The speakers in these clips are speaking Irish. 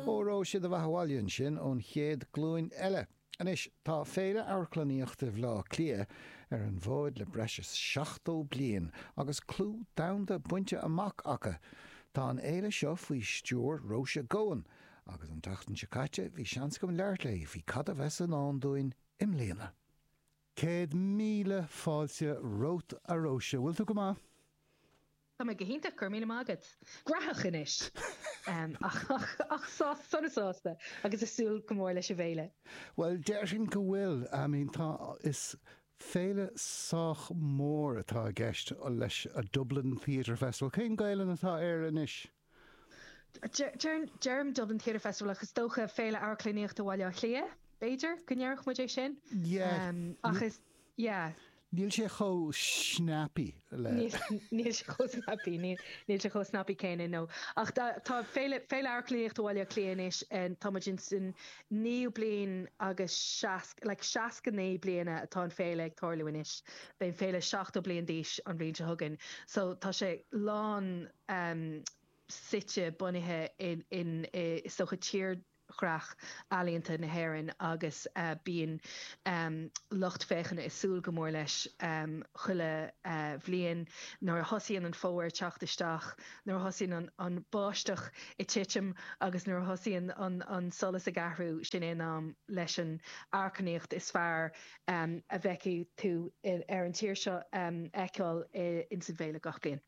Óró sé do bheatha abhaile ansin ón chéad glúin eile. Anois, tá Féile Amharclannaíochta Bhleá Cliath ar an bhfóid le breis is 70 bliain agus clú domhanda bainte amach aici. Tá an fhéile seo faoi stiúir Róise Goan agus an tseachtain seo caite bhí seans agam labhairt léi faoi cad a bheas i ndán dúinn i mbliana. Céad míle fáilte romhat a Róise, bhfuil tú go maith? Tá mé go hiontach, go raibh míle maith agat. Gnóthach anois! Ach sásta, sona sásta agus ag súil go mór leis an bhféile. Bhuel, déarfainn go bhfuil. I mean, tá, is féile sách mór atá i gceist leis an Dublin Theatre Festival. Cén Ghaelainn atá air anois? Deirim Dublin Theatre Festival ach is dócha Féile Amharclannaíochta Bhaile Átha Cliath, b'fhéidir, go ndéarfadh muid é sin. Yeah. Ach is, yeah. Níl sé chomh snappy le. Níl sé chomh snappy, níl sé chomh snappy céanna, no. Ach tá Féile Amharclannaíochta Bhaile Átha Cliath anois, tá muid ins an naoú bliain agus seasca, like 69 bliana atá an fhéile ag tarlú anois. Beidh an fhéile 70 bliain d'aois an bhliain seo chugainn. So tá sé lán, em suite, bunaithe in i sochaí, tírdhreach ealaíonta na hÉireann agus bíonn lucht féachana ag súil go mór leis chuile bhliain. Nuair a thosaíonn an Fómhar ag teacht isteach, nuair a thosaíonn an báisteach ag titim agus nuair a thosaíonn an solas ag athrú, sin é an am leis an amharclannaíocht is fearr a bhfeicfidh tú ar an tír seo a fheiceáil ins an bhféile gach bliain.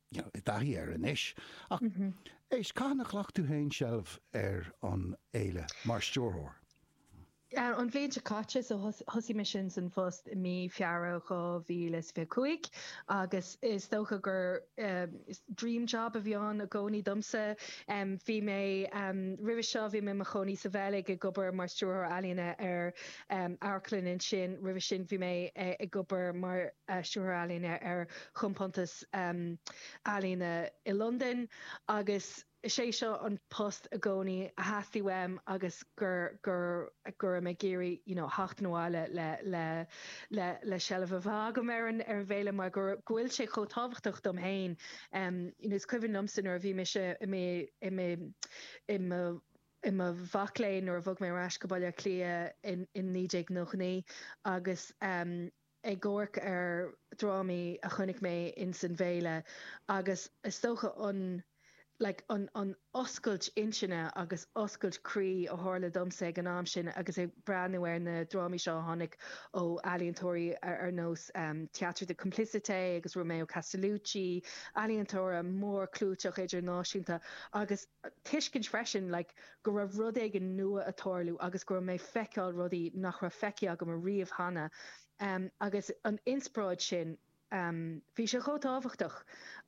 Níl tú i dtaithí air anois ach éist, cathain a ghlac tú féin seilbh ar an fhéile mar stiúrthóir? An bhliain seo caite, so thosaigh mé insan phost i mí Feabhra 2025 agus is dócha gur dream job a bhí ann i gcónaí domsa. Bhí mé, roimhe seo bhí mé i mo chónaí sa Bheilg ag obair mar stiúrthóir ealaíne ar amharclann ansin. Roimhe sin bhí mé ag obair mar stiúrthóir ealaíne ar chompántas Ealaíne i Londain agus is é seo an post i gcónaí a theastaigh uaim agus go raibh mé ag iarraidh you know theacht abhaile le seilbh a bheith agam ar an bhféile mar go bhfuil sé chomh tábhachtach dom féin. Is cuimhin liomsa nuair a bhí mise i mo mhac léinn nuair a bhog mé ar ais go Baile Átha Cliath in 1999 agus ag amharc ar dhrámaí a chonaic mé ins an bhféile agus is dócha an like an an oscailt intinne agus oscailt croí a tharla domsa ag an am sin agus ag breathnú ar na drámaí seo a tháinig ó ealaíontóirí ar nós Theatre de Complicité agus Romeo Castellucci, ealaíontóirí mórchlúiteacha idirnáisiúnta agus. a tuiscint freisin like go raibh rud éigin nua ag tarlú agus go raibh mé ag feiceáil rudaí nach raibh feicthe agam a riamh cheana ehm agus an inspioráid sin ehm bhí sé chomh tábhachtach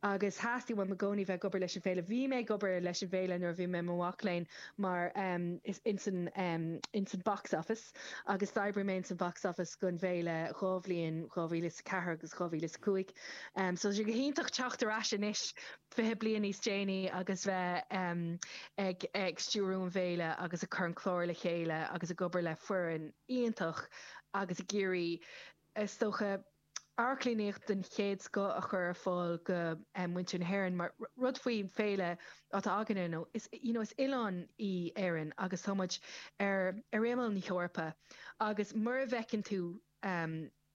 agus theastaigh uaim i gcónaí bheith ag obair leis an bhféile. Bhí mé ag obair leis an bhféile nuair a bhí mé i mo mhac léinn mar ehm is ins an ehm ins an box office agus d'oibrigh mé ins an box office gon bhféile dhá bhliain 2004 agus 2005 ehm so tá sé go hiontach teacht ar ais anois 20 bliain níos déanaí agus bheith ag ag stiúradh an fhéile agus ag cur an cláir le chéile agus ag obair le foireann iontach agus ag iarraidh, is dócha, amharclannaíocht den chéad scoth a chur ar fáil go muintir na hÉireann mar an rud faoin bhféile atá againne nó is you know is oileán í Éirinn agus tá muid ar ar imeall na hEorpa agus mura bhfeiceann tú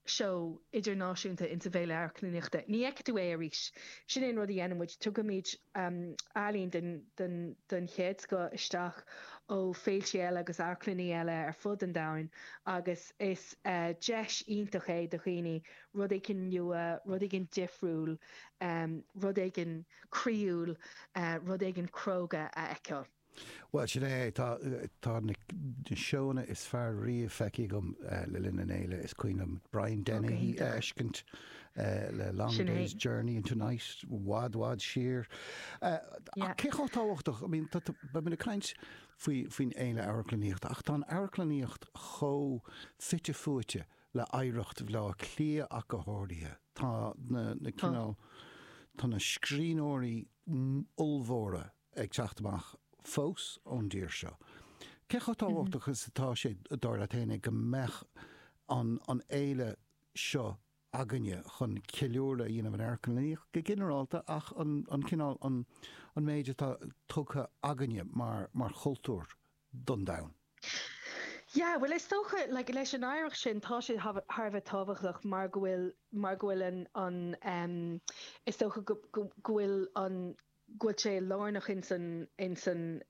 seó idirnáisiúnta ins an bhFéile Amharclannaíochta. Ní fheicfidh tú é arís. Sin é an rud a dhéanann muid, tugaimid ealaín den chéad scoth isteach ó féiltí eile agus amharclannaí eile ar fud an domhain agus is deis iontach é do dhaoine rud éigin nua, rud éigin difriúil, rud éigin croíúil, rud éigin cróga a fheiceáil. Bhuel, sin é. Tá na seóanna is fearr riamh feicthe agam le linn an fhéile. Is cuimhin liom Brian Dennehy a fheiscint le Long Day's Journey into Night i bhfad bhfad siar. Cé chomh tábhachtach, I mean, beidh muid ag caint faoin fhéile amharclannaíochta ach tá an amharclannaíocht chomh fite fuaite le hoidhreacht Bhaile Átha Cliath ach go háirithe. Tá na cineál, tá na scríbhneoirí ollmhóra ag teacht amach fós ón dtír seo. Cé chomh tábhachtach is atá sé, dar leat fhéin, go mbeadh an fhéile seo againne chun ceiliúradh a dhéanamh ar an amharclannaíocht go ginearálta ach an cineál, an méid atá tugtha againne mar chultúr don domhan? Yeah, bhuel is dócha, like, leis an oidhreacht sin tá sé thar a bheith tábhachtach mar go bhfuil, mar go bhfuil an, is dócha go bhfuil an, bhfuil sé lárnach ins an ins an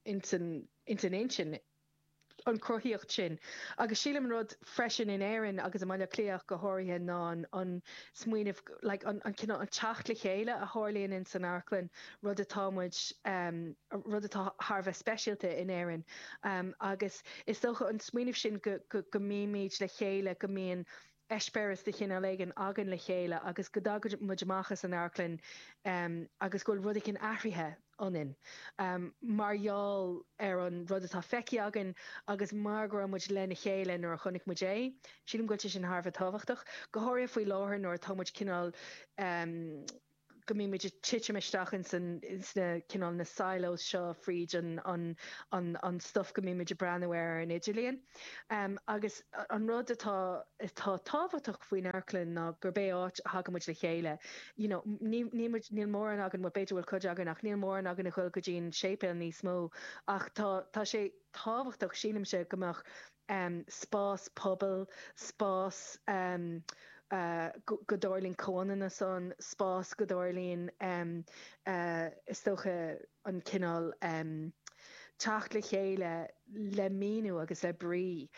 ins an intinn, an chruthaíocht sin. Agus sílim an rud freisin in Éirinn agus i mBaile Átha Cliath go háirithe ná an smaoineamh, like an teacht le chéile a tharlaíonn ins an amharclann, rud atá muid, rud atá thar a bheith speisialta in Éirinn. Agus is dócha an smaoineamh sin go mbímid le chéile, go mbíonn eispéireas de chineál éigin againn le chéile agus go dtagann muid amach as an amharclann agus go bhfuil rud éigin athraithe ionainn mar gheall ar an rud atá feicthe againn agus mar go raibh muid lena chéile nuair a chonaic muid é. Sílim go bhfuil sé sin thar a bheith tábhachtach, go háirithe faoi láthair nuair atá muid cineál. go mbíonn muid ag titim isteach ins an, ins na, cineál, na silos seo fríd an, an, an, an stuif go mbíonn muid ag breathnú air ar an idirlíon. Agus an rud atá, atá tábhachtach faoin amharclann ná gurb é áit a thagann muid le chéile. You know, ní, níl muid, níl mórán againn, bhuel b'fhéidir go bhfuil cuid againn ach níl mórán againn a ghoil go dtí an séipéal níos mó ach tá, tá sé tábhachtach, sílimse, go mbeadh, um spás pobail, spás um go dtarlaíonn comhionannú ann, spás go dtarlaíonn um is dócha an cineál um teacht le chéile le míniú agus le brí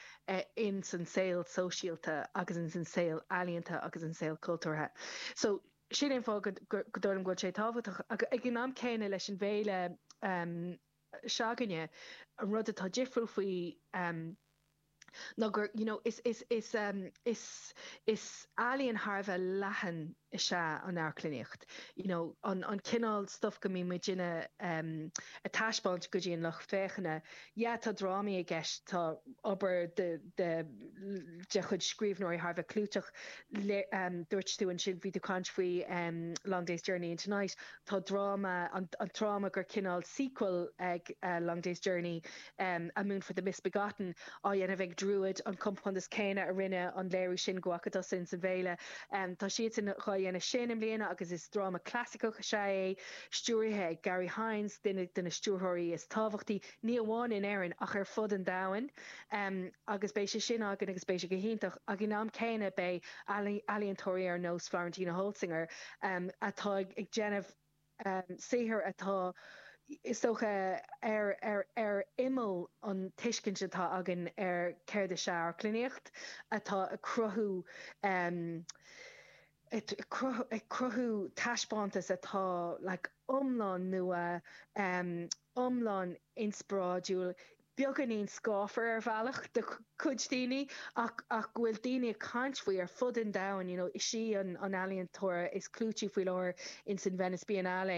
in san saol sóisialta agus in san saol ealaíonta agus in saol cultúrtha. So sin é an fáth go dtarlaíonn go bhfuil sé tábhachtach ag an am céanna leis an bhféile um se'againne. An rud atá difriúil faoi ná gur, you know, is, is, is, is, is ealaíon thar a bheith leathan is ea an amharclannaíocht, you know, an, an cineál stuif go mbíonn muid in ann a thaispeáint go dtí an lucht féachana. Yeah, tá drámaí i gceist, tá obair de, de, de chuid scríbhneoirí thar a bheith clúiteach, le, dúirt tú ansin, bhí tú caint faoi Long Day's Journey into Night, Tá dráma, an dráma gur cineál sequel ag Long Day's Journey, A Moon for the Misbegotten, á dhéanamh ag Druid, an compántas céanna a rinne an léiriú sin go bhfaca tú ansin sa bhféile. Tá siadsan dhá dhéanamh sin i mbliana agus is dráma clasaiceach is ea é, stiúrtha ag Garry Hynes, duine de na stiúrthóirí is tábhachtaí ní amháin in Éirinn ach ar fud an domhain agus beidh sé sin againn agus beidh sé go hiontach ag an am céanna beidh ealaíontóirí ar nós Florentina Holzinger atá ag déanamh saothar atá is dócha ar ar ar imeall an tuiscint atá againn ar céard is ea amharclannaíocht atá ag cruthú ag cruthú taispeántas atá like iomlán nua, iomlán inspioráidiúil, beagáinín scáfar ar bhealach do chuid daoine ach go bhfuil daoine ag caint faoi ar fud an domhain, you know is í an ealaíontóir is clúití faoi láthair in san Venice Biennale.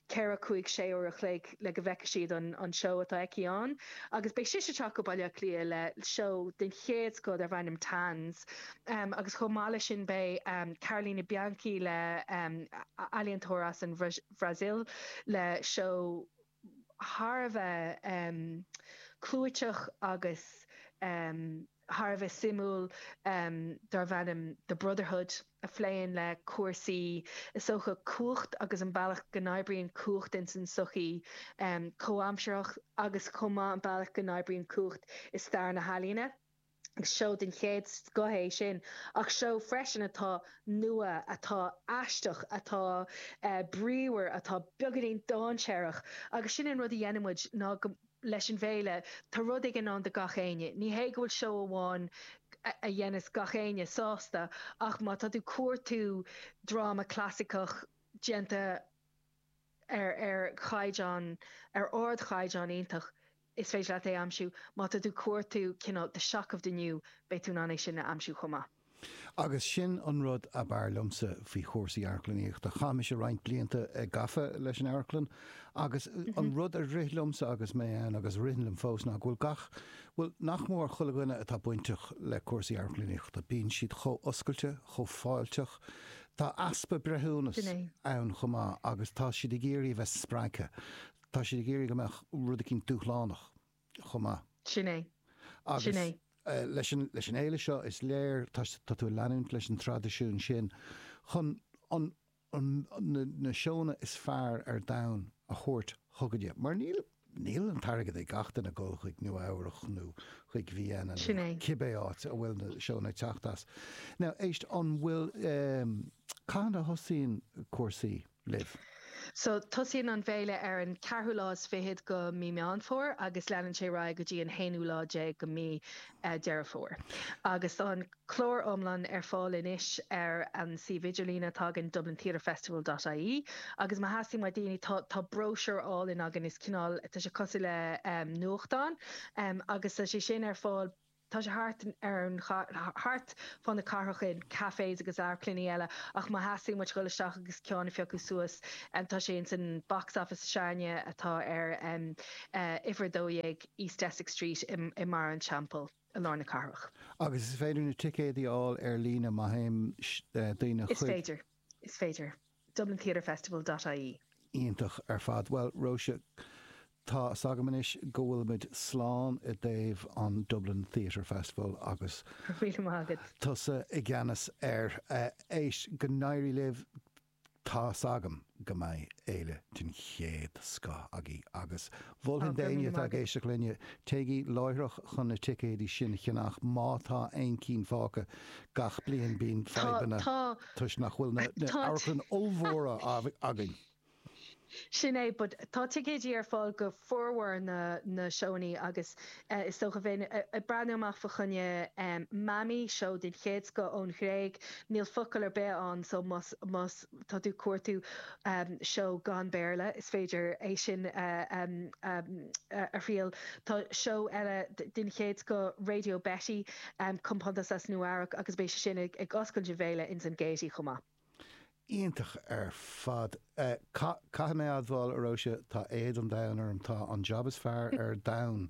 4, 5, 6 uair an chloig le go bhfeicfidh siad an seó atá aici ann agus beidh sise ag teacht go Baile Átha Cliath le seó den chéad scoth darb ainm Tanz agus chomh maith leis sin beidh Carolina Bianchi le ealaíontóir as an Bhrasaíl le seó thar a bheith clúiteach agus thar a bheith suimiúil darb ainm The Brotherhood a phléann le cúrsaí sa tsochaí, cumhacht agus an bealach go n-oibríonn cumhacht ins an tsochaí chomhaimsearach agus chomh maith an bealach go n-oibríonn cumhacht i stair na healaíne. Agus seó den chéad scoth é sin ach seó freisin atá nua, atá aisteach, atá bríomhar, atá beaganín dáinséarach agus sin an rud a dhéanann muid ná go. leis an bhféile, tá rud éigin ann do gach éinne. Ní hé go bhfuil seó amháin a dhéanfas gach éinne sásta ach má tá tú cuartú dráma clasaiceach déanta ar ar chaighdeán, ar ardchaighdeán iontach, is féidir leat é aimsiú. Má tá tú cuartú cineál the shock of the new, beidh tú in ann é sin a aimsiú chomh maith. Agus sin an rud ab fhearr liomsa faoi chúrsaí amharclannaíochta. Chaith mise roinnt blianta gafa leis an amharclann agus an rud a rith liomsa agus mé ann agus a ritheann liom fós ná go bhfuil gach, bhuel, nach mór chuile éinne atá bainteach le cúrsaí amharclannaíochta, bíonn siad chomh oscailte, chomh fáilteach. Tá easpa breithiúnas ann chomh maith agus tá siad ag iarraidh a bheith spreagtha. Tá siad ag iarraidh go mbeadh rud éigin dúshlánach. chomh maith. Sin é. Sin Agus é. eh, leis an, leis an fhéile seo, is léir, tá, tá tú ag leanúint leis an traidisiún sin chun an, an, na, na seónna is fearr ar domhan a thabhairt chugainne. Mar níl, níl an t-airgead ag gach duine dul chuig Nua Eabhrach nó chuig Vienna nó Sin é. cibé áit a bhfuil na seónna ag teacht as. Now, éist, an bhfuil, um, cathain a thosaíonn cúrsaí? libh? So, tosaíonn an fhéile ar an ceathrú lá is fichead de mhí Meán Fómhair agus leanann sé ar aghaidh go dtí an haonú lá déag de mhí Deireadh Fómhair. Agus tá an clár iomlán ar fáil anois ar an suíomh idirlíne atá againn, dublintheatrefestival.ie, agus má theastaíonn ó dhaoine tá tá bróisiúr álainn againn is cineál, tá sé cosúil le nuachtán, agus tá sé sin ar fáil. Tá sé thart ar an chathair, thart fá na cathrach in cafes agus amharclannaí eile ach má theastaíonn uait dhul isteach agus ceann a phiocadh suas tá sé ins an Box Office s'againne atá ar uimhir 12 East Essex Street i mBarra an Teampaill i lár na cathrach. Agus is féidir na ticéidí a fháil ar líne má théann daoine chuig. Is féidir. Is féidir. dublintheatrefestival dot ie. Iontach ar fad. Bhuel, Róise, tá 's agam anois go bhfuil muid slán i dtaobh an Dublin Theatre Festival agus. Míle maith agat. tusa i gceannas air. Éist, go n-éirí libh, tá 's agam go mbeidh féile den chéad scoth agaibh agus Mholfainn d'éinne atá ag éisteacht linne, téigí láithreach chun na ticéidí sin a cheannach má tá aon cinn fágtha. Gach bliain bíonn fadhbanna toisc nach bhfuil na hamharclanna ollmhóra againn. Sin é, but tá ticéidí ar fáil do formhór na seónna agus is dócha bheinn ag breathnú amach fa choinne Mammy, seó den chéad scoth ón Ghréig. Níl focal ar bith ann so más tá tú ag cuartú seó gan Bhéarla, is féidir é sin a thriail. Tá seó eile den chéad scoth, Radio Betty, compántas as Nua Eabhrac, agus beidh sé sin ag oscailt na féile ins an Gaiety chomh maith. Iontach ar fad. Caithfidh mé a admháil, a Róise, tá éad an domhain orm. Tá an jab is fearr ar domhan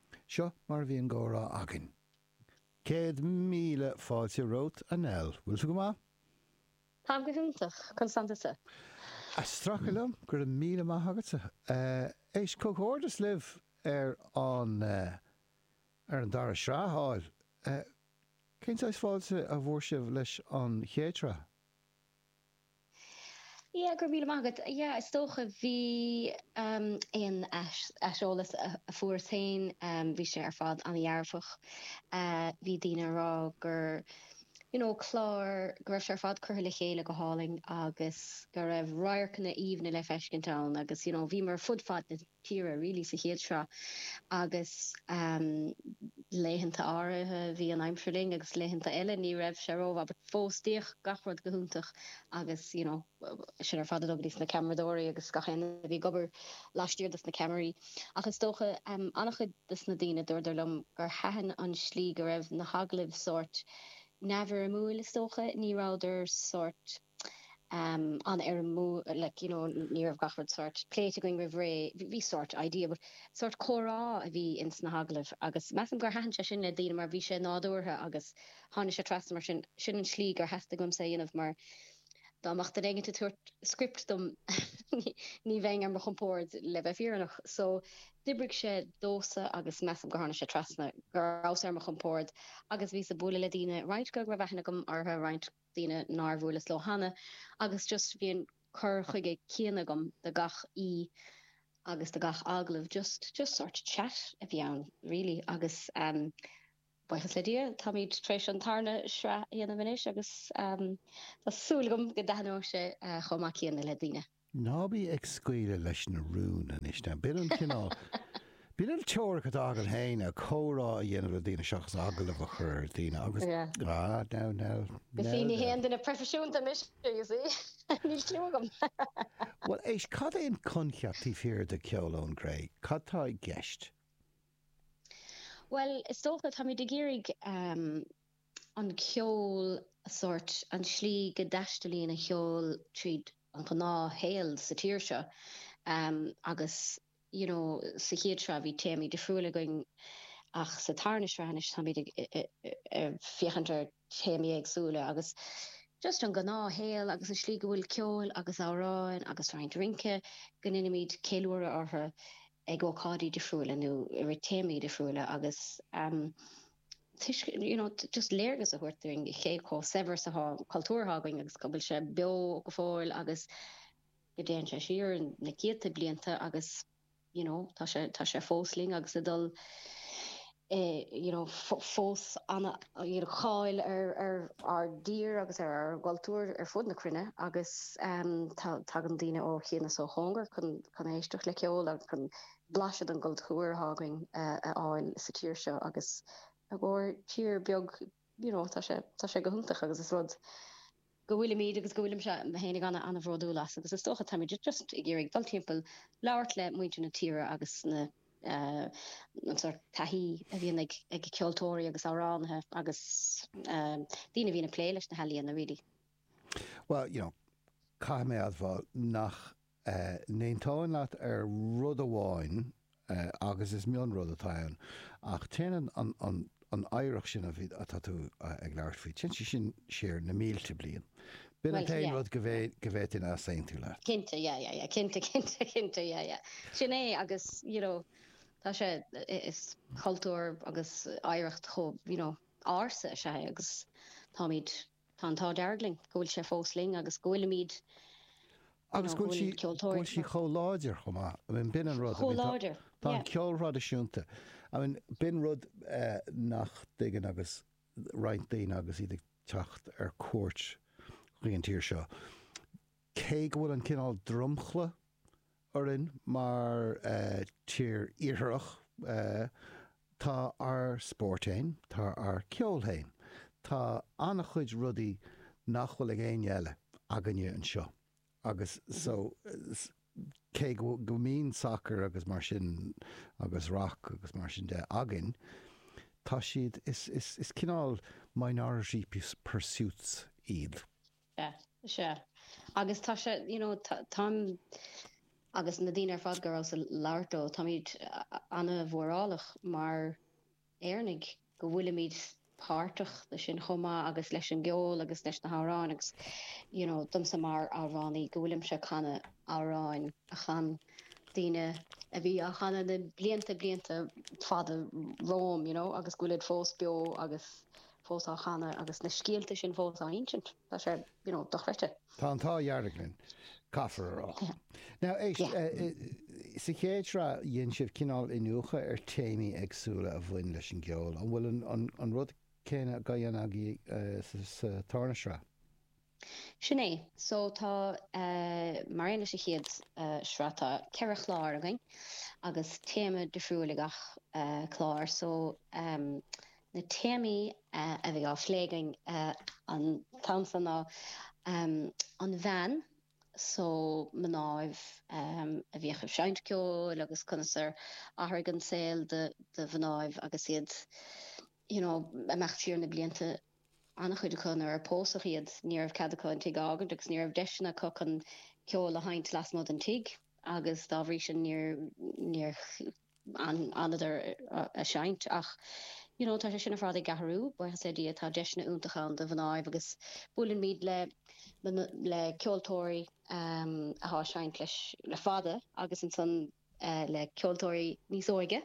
Seo mar a bhí an gcomhrá againn. Céad míle fáilte romhat, a Nell. Bhfuil tú go maith? Táim go hiontach. Conas tánn tusa? Ag strachailt liom. Go raibh míle maith agat. Éist, comhghairdeas libh ar an ar an dara sraith a fháil. Cén saghas fáilte a bhfuair sibh leis an chéad sraith? Yeah, go raibh míle maith agat. Yeah, is dócha bhí um, aon aiseolas a, a fuairas féin, um, bhí sé ar fad an-dhearfach. Uh, bhí daoine ag rá gur you know, clár go raibh sé ar fad curtha le chéile go hálainn agus go raibh radharcanna aoibhne le feiscint ann agus you know, bhíomar fud fad na tíre really sa chéad sraith agus laethanta áirithe bhí an aimsir linn agus laethanta eile ní raibh sé ró mhaith but fós d'fhéach gach rud go hiontach agus you know sin ar fad ag dul dos na ceamaradóirí agus gach éinne a bhí ag obair laistiar dos na ceamaraí ach is dócha um, an-chuid dos na daoine dúirdar liom gur thaitin an slí go raibh na hagallaimh sórt neamhfhoirmiúil is dócha ní rabhadar sórt an-fhoirmiúil like you know ní raibh gach rud sort pléite againn roimh ré bhí sort idea but sort comhrá a bhí ins na hagallaimh agus measaim gur thaitin sé sin le daoine mar bhí sé nádúrtha agus tháinig sé trasna mar sin sin an tslí gur theastaigh uaimse é a dhéanamh mar dá mbeadh duine éigin ag tabhairt script dom ní bheinn ar mo chompord le bheith fírinneach so d'oibrigh sé domhsa agus measaim gur tháinig sé trasna go rabhas ar mo chompord agus bhíos ag bualadh le daoine roinnt go raibh aithne agam orthu roinnt daoine nár bhuaileas leo cheana agus just bhí an cur chuige céanna agam do gach aoi agus do gach agallamh just just sort chat a bhí ann really agus ehm buíochas le Dia táimíd tar éis an tarna sraith a dhéanamh anois agus ehm tá súil agam go dtaitneoidh sé chomh maith céanna le daoine. Ná bí ag scaoileadh leis na rúin anois ná. B'in an cineál b'in an teoiric atá agat fhéin, an comhrá a dhéanamh le daoine seachas agallamh a chur ar dhaoine agus ah now now Ní haon duine proifisiúnta mise, you see. Níl cliú agam. Bhuel éist, cad é an coincheap taobh thiar de Cheol ón gCré? Cad tá i gceist? Bhuel is dócha, táimid ag iarraidh an ceol, sórt, an slí go dtaistealaíonn an ceol tríd an ghnáth shaol sa tír seo agus you know sa chéad sraith bhí téamaí difriúla againn ach sa tarna sraith anois táimid ag féachaint ar théamaí éagsúla agus just an gnáth shaol agus an tslí go bhfuil ceol agus amhráin agus roinnt rince go ndeinimid ceiliúradh orthu ag ócáidí difriúla nó i rith téamaí difriúla agus eh. Is, you know just léargas a thabhairt dúinn cé chomh saibhir is atá an cultúr atá againn agus go bhfuil sé beo go fóill agus go dtéann sé siar na céadta blianta agus you know tá sé tá sé fós linn agus ag dul eh, you know fós ana, you know, cháil ar ar ár dtír agus ar ár gcultúr ar fud na cruinne agus um, tá tagann daoine ó chian is ó chóngar chun chun éisteacht le ceol agus chun Blaiseadh den gcultúr atá againn a fháil sa tír seo agus i gcomhair tír beag, you know, tá sé, tá sé go hiontach agus is rud é go bhfuilimid agus go bhfuilimse féin ana-bhródúil as agus is dócha táimid just ag iarraidh dul timpeall, labhairt le muintir na tíre agus na, eh, an sort taithí a bhíonn ag ceoltóirí agus amhránaithe agus, eh, daoine a bhíonn ag plé leis na healaíona, really. Well, you know, caithfidh mé a admháil nach n-aontóinn leat ar rud amháin agus is mionrud atá ann ach téann an oidhreacht sin atá tú ag labhairt faoi, téann sí sin siar na mílte bliain. B'in an t-aon rud go bhféadfainn easaontú leat. Cinnte, yeah, yeah, yeah, cinnte, cinnte, cinnte, yeah, yeah. Sin é agus, you know, tá sé, is cultúr agus oidhreacht chomh, you know, ársa is ea é agus táimid, Tá an t-ádh dearg linn go bhfuil sé fós linn agus go bhfuilimid, you know, go bhfuil ceoltóirí. Agus go bhfuil sí chomh láidir chomh maith. I mean, b'in an rud. Chomh láidir. Tá an ceol traidisiúnta. I mean, b'in rud eh, nach dtuigeann agus roinnt daoine agus iad ag teacht ar cuairt chuig an tír seo. Cé go bhfuil an cineál dromchla orainn mar tír iartharach, tá ár spóirt fhéin, tá ár gceol fhéin, tá an-chuid rudaí nach bhfuil ag éinne eile againne anseo agus so cé go mbíonn sacar agus mar sin agus rac agus mar sin de againn, tá siad, is cineál minority pursuits iad. Sea. Sea. Agus tá sé, you know, táim, agus na daoine ar fad go rabhas ag labhairt leo, táimid an-mhórálach mar Éireannaigh go bhfuilimid páirteach le sin chomh maith agus leis an gceol agus leis na hamhráin agus, you know, domsa mar amhránaí go bhfuilimse ag canadh amhrán a chan daoine a bhí á gcanadh na blianta, blianta fada romham, you know, agus go bhfuilid fós beo agus. fós á gcanadh agus na scéalta sin fós á n-insint. Tá sé, you know, dochreidte. Tá an t-ádh dearg linn, caithfear a rá. Now, éist, sa chéad sraith dhein sibh cineál iniúchadh ar téamaí éagsúla a bhain leis an gceol. An bhfuil an rud céanna á dhéanamh agaibh sa tarna sraith? Sin é. So tá, mar aon leis an chéad sraith, tá ceithre chlár againn agus téama difriúil ag gach clár. So na téamaí a bheidh á phlé againn an t-am so ná an bhean, so mnáibh a bhíodh ag seinnt ceoil agus conas ar athraigh an saol do mhnáibh agus iad, you know, ag imeacht siar na blianta. An-chuid acu, nuair a pósadh iad, ní raibh cead acu an tigh a fhágaint agus ní raibh deiseanna acu chun ceoil a sheinnt lasmuigh den tigh agus dá bhrí sin níor fhanadar ag seinnt ach you know tá sé sin ar fad ag athrú buíochas le Dia tá deiseanna iontach ann do mhnáibh agus buaileann muid le le ceoltóirí athá ag seinnt le le fada agus ansan le ceoltóirí níos óige,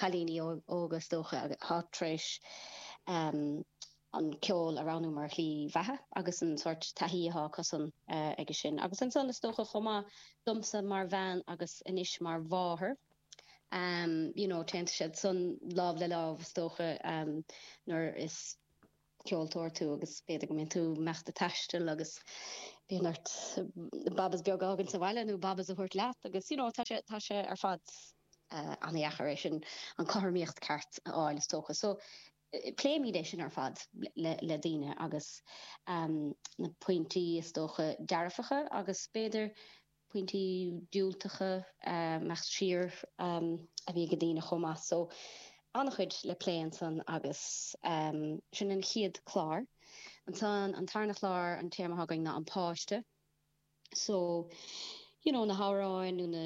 cailíní óga is dócha, atá tar éis an ceol a roghnú mar shlí bheatha agus an sórt taithí atá acusan aige sin. Agus ansan is dócha chomh maith domsa mar bhean agus anois mar mháthair, you know, téann siad san lámh le lámh is dócha nuair is. ceoltóir tú agus b'fhéidir go mbíonn tú ag imeacht ag taisteal agus bíonn ort bábas beaga a fhágaint sa bhaile nó bábas a thabhairt leat agus you know tá sé tá sé ar fad an-dheacair é sin an cothromaíocht ceart a fháil is dócha so pléimid é sin ar fad le le daoine agus na pointí is dócha dearfacha agus b'fhéidir pointí diúltacha ag imeacht siar a bhí ag daoine chomh maith so an-chuid le plé ansan agus sin an chéad chlár. Ansan an tarna chlár an téama atá againn ná an páiste so you know na hamhráin nó na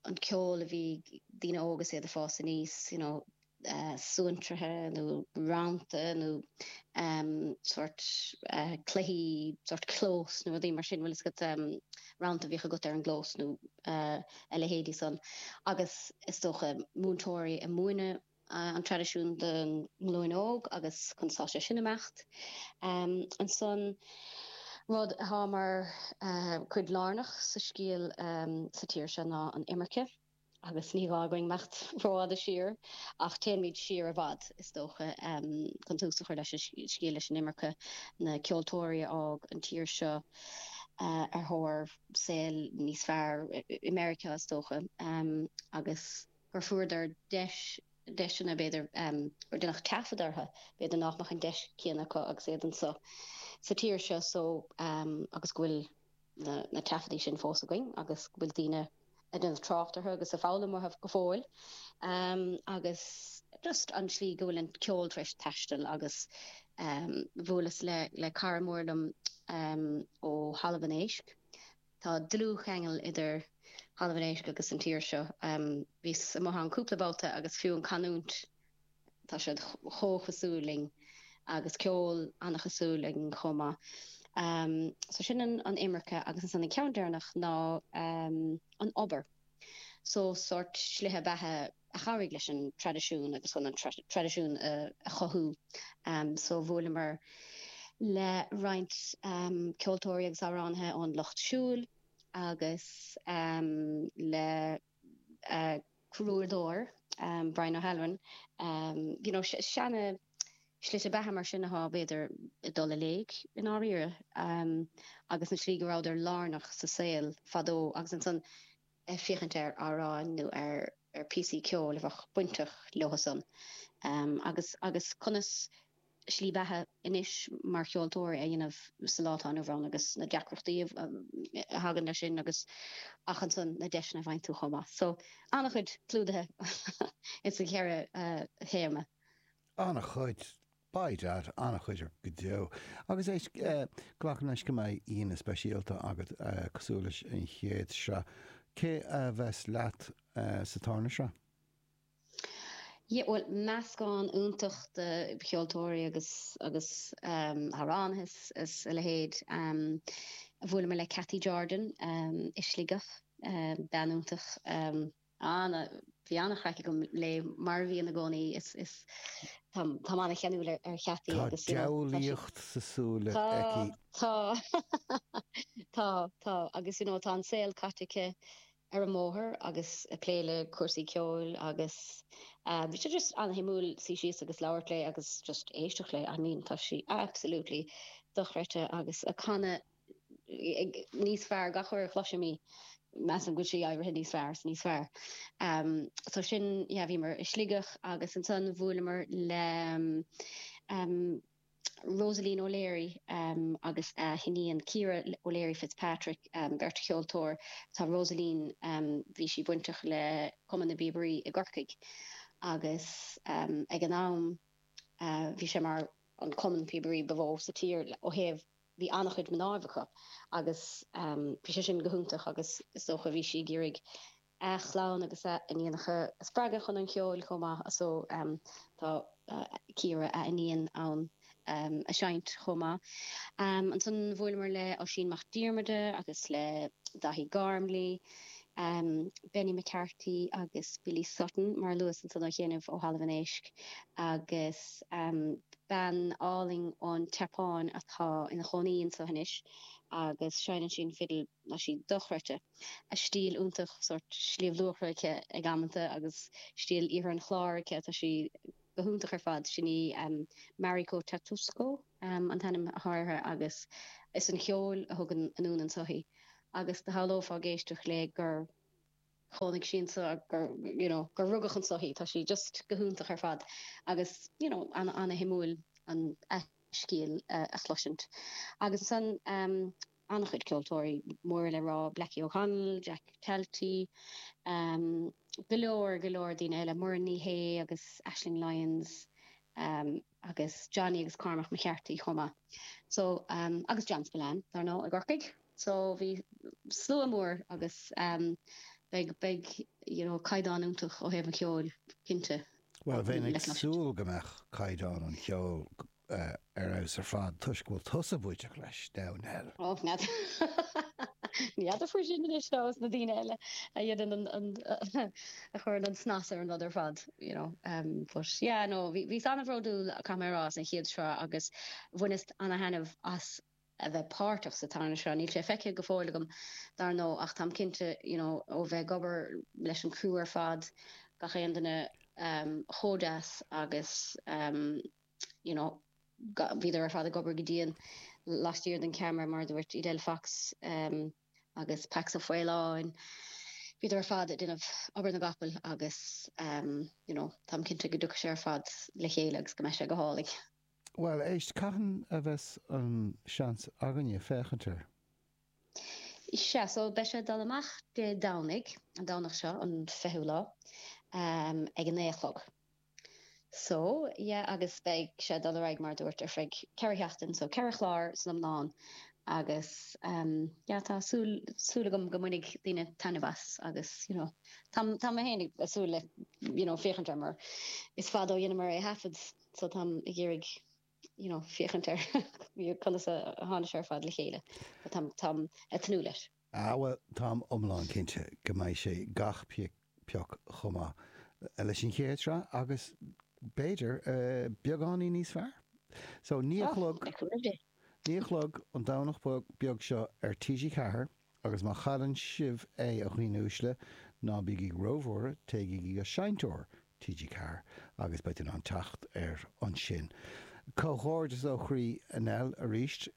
an ceol a bhí ag daoine óga is iad ag fás aníos you know suantraithe nó rannta nó sórt cluichí, sórt clós nó rudaí mar sin, bhfuil fhios agat rannta a bhíodh agat ar an gclós nó a leithéidí san agus is dócha múinteoirí a múineann an traidisiún don nglúin óg agus chun fáil as san imeacht ansan, rud athá mar chuid lárnach sa scéal sa tír seo ná an imirce. Agus ní gá dhúinn imeacht rófhada siar, ach téanaimid siar i bhfad, is dócha, chun tús a chur leis an scéal, leis an imirce, na ceoltóirí a fhág an tír seo ar thóir saol níos fearr, i Meiriceá, is dócha, agus gur fuaireadar deis, deiseanna, b'fhéidir, gur deineadh taifead orthu, b'fhéidir nach mbeadh an deis chéanna acu agus iad anseo sa tír seo, so, agus go bhfuil. na taifeadtaí sin fós againn agus go bhfuil daoine a déanamh trácht orthu agus a foghlaim uathu go fóill agus just an tslí go bhfuil an ceol tar éis taistil agus bhuaileas le cara mór liom ó thalamh an éisc. Tá dlúthcheangal idir thalamh an éisc agus an tír seo. Bhíos amuigh ann cúpla babhta agus fiú an canúint. Tá siad chomh chosúil linn agus ceol an-chosúil linn chomh maith. So sin an imirce agus ansan an ceann deireanach ná an obair. So sórt slite beatha a chabhraigh leis an traidisiún agus chun an traidisiún a chothú. So bhuaileamar le roinnt ceoltóirí agus amhránaithe ón lucht siúil agus le crúdóir, Brian O'Halloran, you know, seana slite beatha mar sin athá, b'fhéidir, ag dul i léig i ndáiríre agus an tslí go rabhadar lárnach sa saol fadó agus ansan ag féachaint ar amhráin nó ar píosaí ceoil a bheadh bainteach leotha san agus agus conas slí bheatha anois mar cheoltóir a dhéanamh sa lá atá inniu ann agus na deacrachtaí a thagann le sin agus ach ansan na deiseanna a bhaineann leis chomh maith. So an-chuid clúdaithe ins an cheithre théama. An-chuid, by dad, an-chuid go deo. Agus é glacaim leis go mbeidh aíonna speisialta agat cosúil leis an chéad sraith. Cé a bheas leat sa tarna sraith? Bhuel, meascán iontach de cheoltóirí agus agus amhránaithe is a leithéid. Bhuaileamar le Cathy Jordan i Sligeach, bean iontach. Bhí an-chraic agam léi, mar a bhíonn i gcónaí. Is táim an-cheanúil ar Chathy. Tá diabhlaíocht sa súil aici. Tá, tá, tá. Agus you know tá an saol caite aici. ar an mbóthar agus ag plé le cúrsaí ceoil agus bhí sé just ana-shuimiúil suí síos agus labhairt léi agus just éisteacht léi. I mean tá sí absolutely dochreidte agus ag canadh níos fearr gach uair a chloisim í. Measaim go bhfuil sí éirithe níos fearr is níos fearr. So sin, yeah bhíomar i Sligeach agus ansan bhuaileamar le Rosaleen O'Leary agus a hiníon Ciara O'Leary Fitzpatrick, beirt cheoltóir. Tá Rosaleen, bhí sí bainteach le Cumann na bPíobairí i gCorcaigh agus ag an am bhí sé mar an cumann píobairí ba mhó sa tír ó thaobh, bhí an-chuid mná acu agus bhí sé sin go hiontach agus is dócha bhí sí ag iarraidh a clann agus a hiníonacha a spreagadh chun an cheoil chomh maith so tá Ciara a hiníon ann ag seinnt chomh maith. Ansan bhuaileamar le Oisín Mac Diarmada agus le Dáithí Gormley, Benny McCarthy agus Billy Sutton mar a luas ansan ó chianaibh ó Thalamh an Éisc agus bean álainn ón tSeapáin atá ina chónaí anso anois agus seineann sí an fhidil. Tá sí dochreidte. A stíl iontach, sórt Sliabh Luachra aici ag amanta agus stíl Oirthear an Chláir aici. Tá sí go hiontach ar fad. Sin í Mariko Tatsuko an t-ainm atá uirthi agus is é an ceol a thug anonn anso í. Agus do shamhlófá ag éisteacht léi gur chónaigh sí anseo, gur, you know, gur rugadh anso í. Tá sí just go hiontach ar fad agus, you know, ana-shuimiúil an scéal a chloisint. Agus ansan. an-chuid ceoltóirí mór le rá, Blackie O'Connell, Jack Talty, go leor, go leor daoine eile, Muireann Ní Shé agus Aisling Lyons agus Johnny agus Cormac McCarthy chomh maith. So agus John Spillane dar ndóigh i gCorcaigh. So bhí slua mór agus beidh, beidh you know caighdeán iontach ó thaobh an cheoil cinnte. Bhuel bheinn ag súil go mbeadh caighdeán an cheoil ar fheabhas ar fad toisc go bhfuil tusa bainteach leis, a Dhomhnaill. Ó, ní fheadar faoi sin anois, is iad na daoine eile a dhéanann an, a chuireann an snas ar an rud ar fad, you know. But yeah, no, bhíos an-bhródúil, caithfidh mé a rá, as an chéad sraith agus bhaineas an-thaitneamh as a bheith páirteach sa tarna sraith. Níl sé feicthe go fóill agam, dar ndóigh, ach táim cinnte, you know, ó bheith ag obair leis an criú ar fad, gach aon duine chomh deas agus. you know, bhíodar ar fad ag obair go dian laistiar den cheamara mar a dúirt Edel Fox ehm agus Pax Ó Faoláin, bhíodar ar fad ag déanamh obair na gcapall agus ehm you know, táim cinnte go dtiocfaidh sé ar fad le chéile agus go mbeidh sé go hálainn. Bhuel, éist, cathain a bheas an seans againne féachaint air? Sea, so beidh sé ag dul amach Dé Domhnaigh, an Domhnach seo, an fichiú lá, ehm ag a naoi a chlog. So, yeah agus beidh sé ag dul ar aghaidh mar a dúirt ar feadh ceithre sheachtain so ceithre chlár san iomlán agus ehm yeah tá súil súil agam go mbainfidh daoine taitneamh as agus you know tá tá mé féin ag súil le you know féachaint air mar is fada ó dheineamar é a thaifead so táim ag iarraidh you know féachaint ar conas a tháinig sé ar fad le chéile but táim ag tnúth leis. Ah bhuel, táim iomlán cinnte go mbeidh sé gach pioc chomh maith leis an chéad sraith agus b'fhéidir beagáinín níos fearr. So, naoi a chlog, naoi a chlog an Domhnach beag seo ar TG Ceathair agus má chailleann sibh é, a dhaoine uaisle, ná bígí róbhuartha, téigí go seinnteoir TG Ceathair agus beidh tú in ann teacht air ansin. Comhghairdeas ó chroí Nell, arís.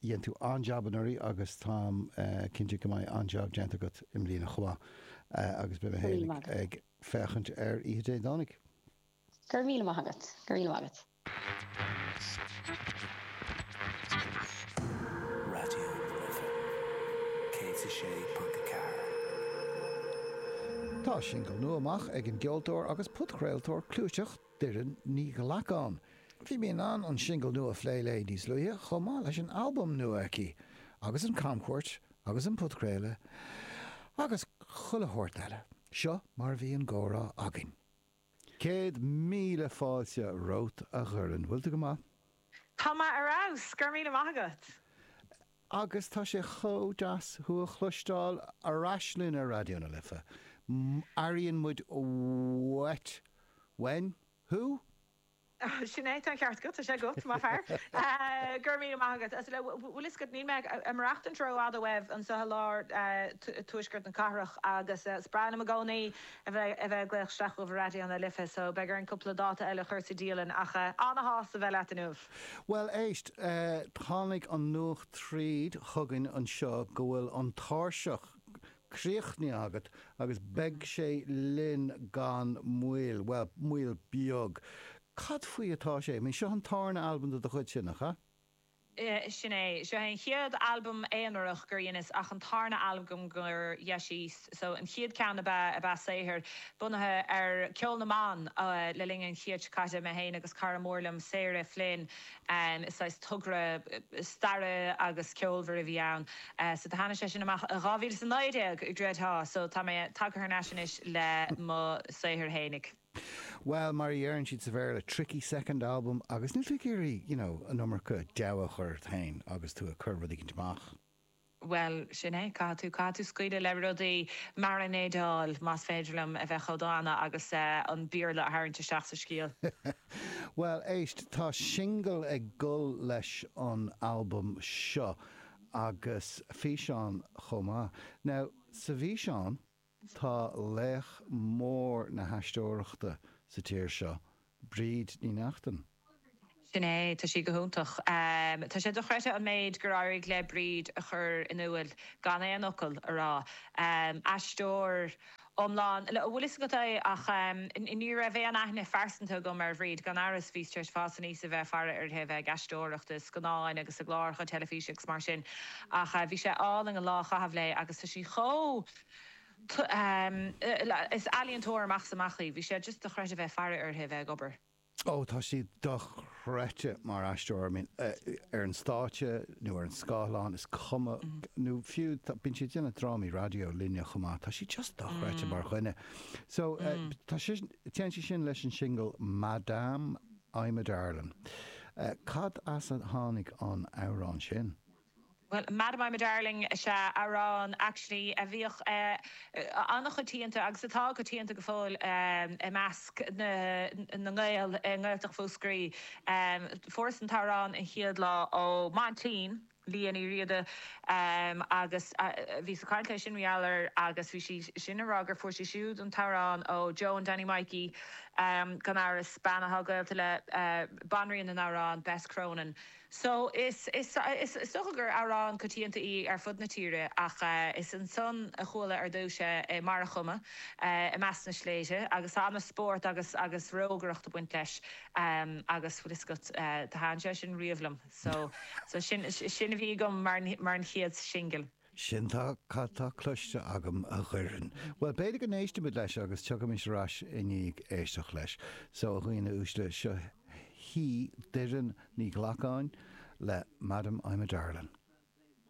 Dhein tú an-jab anuraidh agus táim cinnte go mbeidh an-jab déanta agat i mbliana chomh maith agus beidh mé féin ag féachaint air oíche Dé Domhnaigh. Go raibh míle maith agat. Go raibh míle maith agat. Raidió na Life 106.4. Tá singil nua amach ag an gceoltóir agus podchraoltóir clúiteach Doireann Ní Ghlacáin. Bhí mé in ann an singil nua a phlé léi níos luaithe chomh maith leis an albam nua aici agus an camchuairt agus an podchraoladh agus chuile shórt eile. Seo mar a bhí an comhrá againn. Céad míle fáilte romhat a Dhoireann. Bhfuil tú go maith? Tá mé ar fheabhas! Go raibh míle maith agat! Agus tá sé chomh deas thú a chloisteáil ar ais linn ar Raidió na Life. Airíonn muid uait. Woohoo! Sin é, tá an ceart agat, tá sé agat, mo fhear. Go raibh míle maith agat. Bhuel an bhfuil fhios agat, níl mé ag maireachtáil rófhada uaibh anso i lár tuaisceart na cathrach agus is breá liom i gcónaí. a bheith a bheith ag glaoch isteach chuig Raidió na Life so beidh orainn cúpla dáta eile a chur sa dialann ach ana-shásta bheith leat inniu. Bhuel, éist, tháinig an nuacht thríd chugainn anseo go bhfuil an tairseach críochnaithe agat agus beidh sé linn gan mhoill, bhuel, moill bheag. Cad faoi atá sé, seo an tarna albam de do chuidse, nach ea? Sin é. Seo é an chéad albam aonarach gur dheineas ach an tarna albam gur dheiníos. So an chéad ceann ab ea ab ea saothar bunaithe ar ceol na mban le linn an chéid caite. Mé féin agus cara mór liom Sarah Flynn is saghas togra staire agus ceoil a bhí ann. So do tháinig sé sin amach i 2019 i gceart. So tá mé tagtha thar n-ais anois le mo shaothar fhéinig. Bhuel, mar a dheireann siad sa Bhéarla, tricky second album agus níl tú ag iarraidh, you know, an iomarca deabhadh a chur ort féin agus tú ag cur rud éigin amach. Bhuel, sin é, caithfidh tú, caithfidh tú scaoileadh le rudaí, maranéideáil, más féidir liom a bheith chomh dána agus an Béarla a tharraingt isteach sa scéal. Bhuel, éist, tá singil ag dul leis an albam seo agus físeán chomh maith. Now, sa bhfíseán. Tá laoch mór na haisteoireachta sa tír seo, Bríd Ní Neachtain. Sin é, tá sí go hiontach. Tá sé dochreidthe an méid gur éirigh le Bríd a chur in iúil gan aon fhocal a rá. Aisteoir iomlán, an bhfuil fhios agat é ach ní raibh aon aithne phearsanta agam ar Bhríd, gan amhras bhíos tar éis fás aníos a bheith ag faire uirthi, a bheith ag aisteoireacht i scannáin agus i gcláracha teilifíse agus mar sin ach bhí sé álainn an lá a chaitheamh léi agus tá sí chomh. Is ealaíontóir amach 's amach í. Bhí sé just dochreidte bheith ag faire uirthi a bheith ag obair. Ó, tá sí dochreidte mar aisteoir. I mean, ar an stáitse nó ar an scáileán, is cuma, nó fiú, bíonn sí ag déanamh drámaí raidió linne chomh maith. Tá sí just dochreidte mar dhuine. So, tá sí, téann sí sin leis an singil Madam, I'm a Darlin. Cad as a tháinig an amhrán sin? Bhuel, Madam I'm a Darling is ea amhrán, actually, a bhíodh an-choitianta agus atá coitianta go fóill i measc na nGael i nGaeltacht Mhúscraí. Fuaireas an t-amhrán an chéad lá ó m'aintín, Lia Ní Riada, agus bhíos ag caint léi sin, mar gheall air, agus bhí sí sin ag rá gur fuair sí siúd an t-amhrán ó Joan Danny Mikey, gan amhras, bean atá gaolta le banríon na n-amhrán, Bess Cronin. So, is dócha gur amhrán coitianta í ar fud na tíre ach is ansan a chuala ar dtúis é mar adeirim i measc na sléibhte agus tá an-spórt agus rógaireacht ag baint leis agus bhfuil 'fhios agat, d'fhan sé sin riamh liom so sin a bhí agam mar an chéad singil. Sin cad tá cloiste agam, a Dhoireann. Bhuel, b'fhéidir go n-éistfimid leis agus tiocfaimid ar ais i ndiaidh éisteacht leis. So, a dhaoine uaisle, seo hí Doireann Ní Ghlacáin le Madam, I'm a Darlin'.